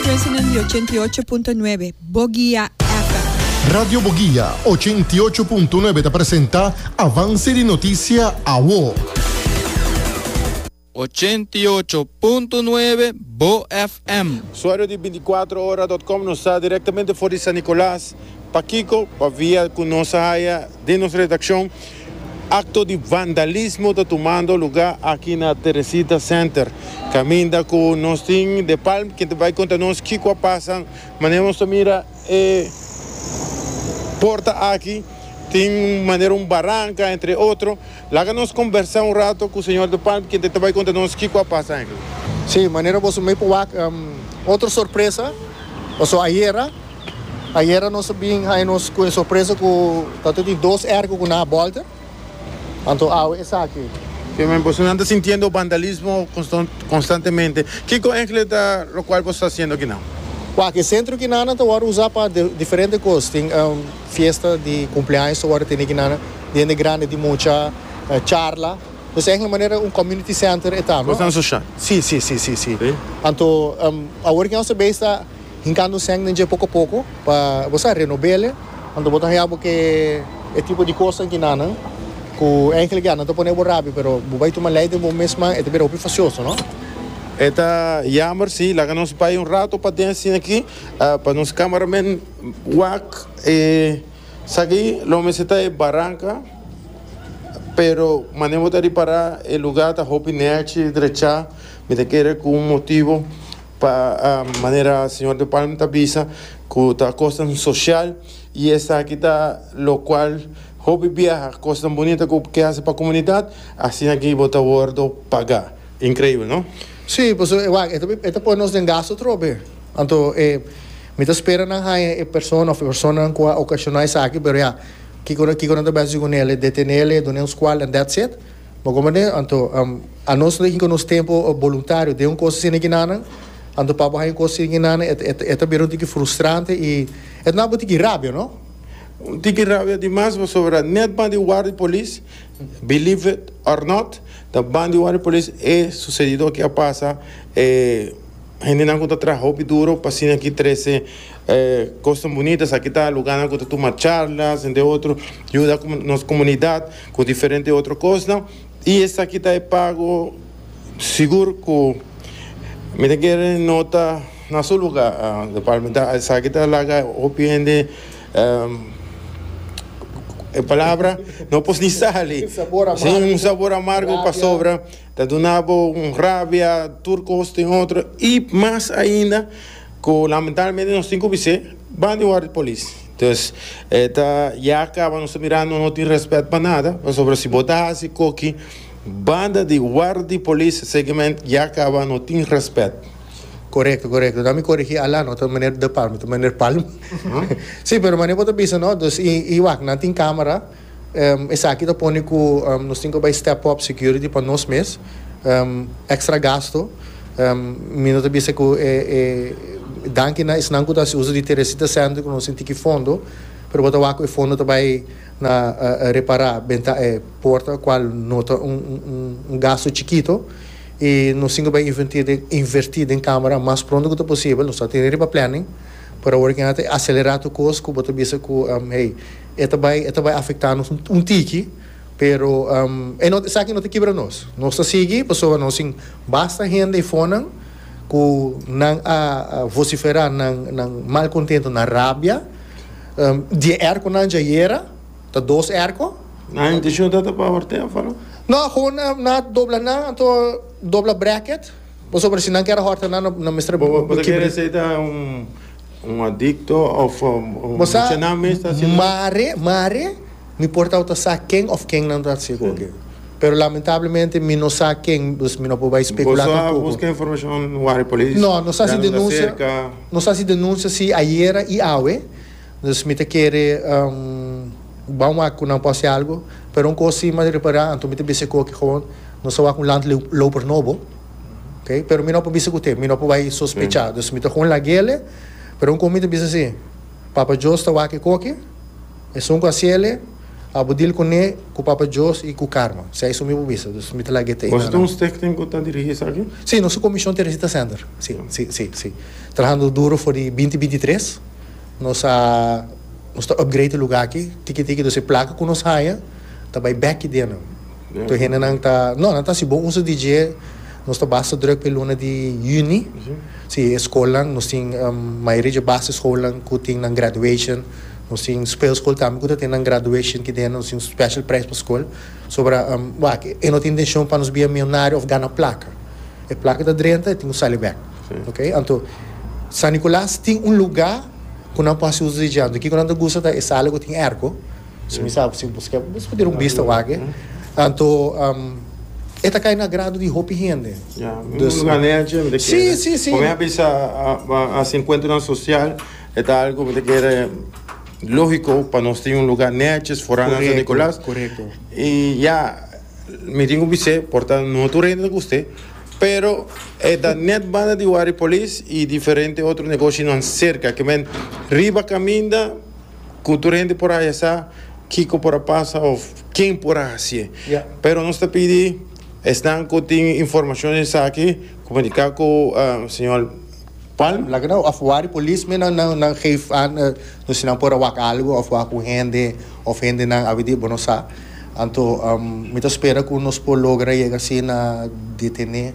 President di ochenta i ocho punto nuebe, Boguia FM. Radio Boguia ochenta i ocho punto nuebe ta presenta Avance di Noticia Awo. Ochenta i ocho punto nuebe, Bo FM. Usuario di binti kuater ora dot com nos ta directamente for di San Nicolas, pakiko? pa via cu nos a haya den nos redaccion. Acto di vandalismo ta tumando luga aki na Teresita Center, caminda cu nos tin de Palm quien ta bay conta nos kico a pasa. Manera nos ta mira e porta aki tin manera un baranca entre otro. Laga nos combersa un rato cu señor de Palm quien ta ta bay conta nos kico a pasa aki. Sí, manera boso mey por wak otro sorpresa, paso ayera. Ayera nos a bin haña nos cu e sorpresa cu ta tur di dos erco cu nan a bolta. Anto awe esaki. Oke men, boso nan ta sintiendo vandalismo constantemente. Kico engle ta locual boso ta haciendo aki nan? Waak, e centro aki nan ta wordo usa pa diferente cos. Tin fiesta di cumpleaños ta wordo tene aki nan, di hende grandi, di mucha, charla. Pues engle manera un community center e ta. Cos nan social. Si, si, si, si, si. Anto awor ki nos a bay esta. Hincando seng den dje poco poco pa bo sa renobele. Anto bo ta haya bo ke e tipo di cosnan kinanan cu enkele ke a nan ta pone bo rabia pero bo bay tuma ley den bo mes man e ta bira hopi facioso no. E ta jammer si. Laga nos bay un rato pa den sin aki pa nos camera men wak e saki lo mester ta e baranca pero mane bo ta ripara e lugar ta hopi nerchi drecha mi ta kere cu un motibo. Pa manera señor De Palm ta bisa cu ta cosnan social y esaki ta lo cual hopi biaha cosnan bonita cu ke haci pa comunidad asina aki bo ta wordo paga. Increibel no? Sí, pasobra e wak e ta pone nos den gasto atrobe. Anto e mi ta spera nan haña e persona of e personanan cu a ocasiona esaki pero ya kico kico nan ta bisa haci cu nele? Detenele, dun'e un scual and that's it? Bo komo ne, anto, anos no hinka nos tempo boluntario den un kos asina ki nanan, anto pa bo haña un kos asina ki nanan e ta e ta bira un tiki frustrante i e ta naba tiki rabia, no? Un tiki rabia di mas pasobra net ban di war di polis, believe it or not, ta ban di war di polis e susedido aki a pasa, e hendenan ku ta traha hopi duro pa asina ki trese e kosnan bunito, esaki ta lugarnan ku ta tuma charlas ente otro, yuda nos komunidat. ku diferente otro kosnan, i esaki ta e pago sigur ku mi ta kere nota na su luga, departamental, esaki ta laga hopi hende e palabra no pos ni sali, si un sabor amargo pasobra ta duna bo un rabia, tur kos tin otro, i mas ainda ku lamentablemente nos tin ku bis'é ban di wòrdu polis. Entonces e ta ya caba nos ta mira nos no tin respet pa nada pasobra si bo ta haci coki banda di wardi polis seguimente ya caba no tin respet. Corecto corecto dame corigi Alan no ta meneer de Palma ta meneer Palm si pero manera bo ta bisa no dus y y wak nan tin camera. Esaki ta pone ku nos tin ku bai step up security pa nos mes. Extra gasto. Mi no ta bisa ku e danki na esnan ku ta hasi uso di Teresita Center ku nos tin tiki fondo, pero bo ta wak ku e fondo ta bai na repará benta e porta el kual no ta un gasto chikito. I nos tin ku bai invertí den kamera mas pronto ku ta posibel. Nos ta tene riba planning, pero awor a keda ta aselerá tur kos ku bo ta bisa ku hey E ta bai e ta bai afecta nos un tiki pero e no esaki no ta kibra nos nos ta sigui pasobra nos tin basta hende e fonan ku nan a vocifera nan nan mal contento nan rabia die erco nan dja yera ta dos erco Nan intencion ta ta pa hortea of wano? No gewoon nan a dobla nan anto dobla bracket pasobra si nan kier a horta nan nan mester Bo bo ta kere esei ta un Un adikto òf un shenan mes ta hasi nan? Mare, mare, mi por tawata sa ken òf kennan ta hasi ku oke. Pero lamentablemente mi no sa ken, dus mi no por bai spekulá tampoku. Boso a buska informashon wak di polis? No, nos hasi denunsia, nos hasi denunsia si ayera i awe. Dus mi ta kere ban wak ku nan por hasi algu. Pero un kos sima di repará, anto mi ta bisa ku oke, nos a wak un landloper nobo. Okay pero mi no por bisa cu te mi no por bay sospecha dus mi ta con laguele pero un con mi ta bisa si Papa Jos ta wak e coki esun cu haciele abo deal cune cu Papa Jos y cu Carmen si a esun mi por bisa dus mi ta lague te Nos ta un stichting cu ta dirigi esaki? Si nos ta comision Teresita Sander si si si si trahando duro for di binti binti tres nos a nos ta upgrade e lugar aki tiki tiki dus e placa cu nos haya ta bay back ki dena. Tur hendenan ta, No, nan ta hasi bon uso di dje, nos ta basta drùk pa e luna di yüni. Sí, e skolnan, nos tin mayoria dje basischoolnan ku tin nan graduation. Nos tin speelskool tambe ku ta tene nan graduation aki dentro. Nos tin un special prijs pa skol. Sombra, wak, e no ta intenshion pa nos bia milyonario òf gana plaka. E plaka ta drenta, e tin ku sali bèk. Ok? Anto, San Nikolas tin un lugá ku nan por hasi uso di dje. Anto, kiko nan ta gusta ta e sala ku tin èrko. Si mi sa ku si buska e, buska den un bista wak e. Anto e ta kai na agrado di hopi hende. Ya, un luga nechi mi ta kere. Si, si, si. Ku mi a bisa a hasi enkuentronan sosial e ta algu mi ta kere logiko pa nos tin un luga nechi for nan San Nikolas. Korekto, korekto. I ya mi tin ku bis'é por ta no tur hende ta gusta e, pero e ta nèt banda di Wari Polis i diferente otro negoshinan serka, ke men riba kaminda. cu tur hende por haya sa kico por a pasa of ken por a haci'e. Pero nos ta pidi esnan cu tin informacion di esaki comunica cu Señor. Palm, laga nan of wak di policemen nan geef aan nos si nan por a wak algo of wak un hende of hendenan awe di bo no sa. Anto mi ta spera cu nos por logra yega asina detene.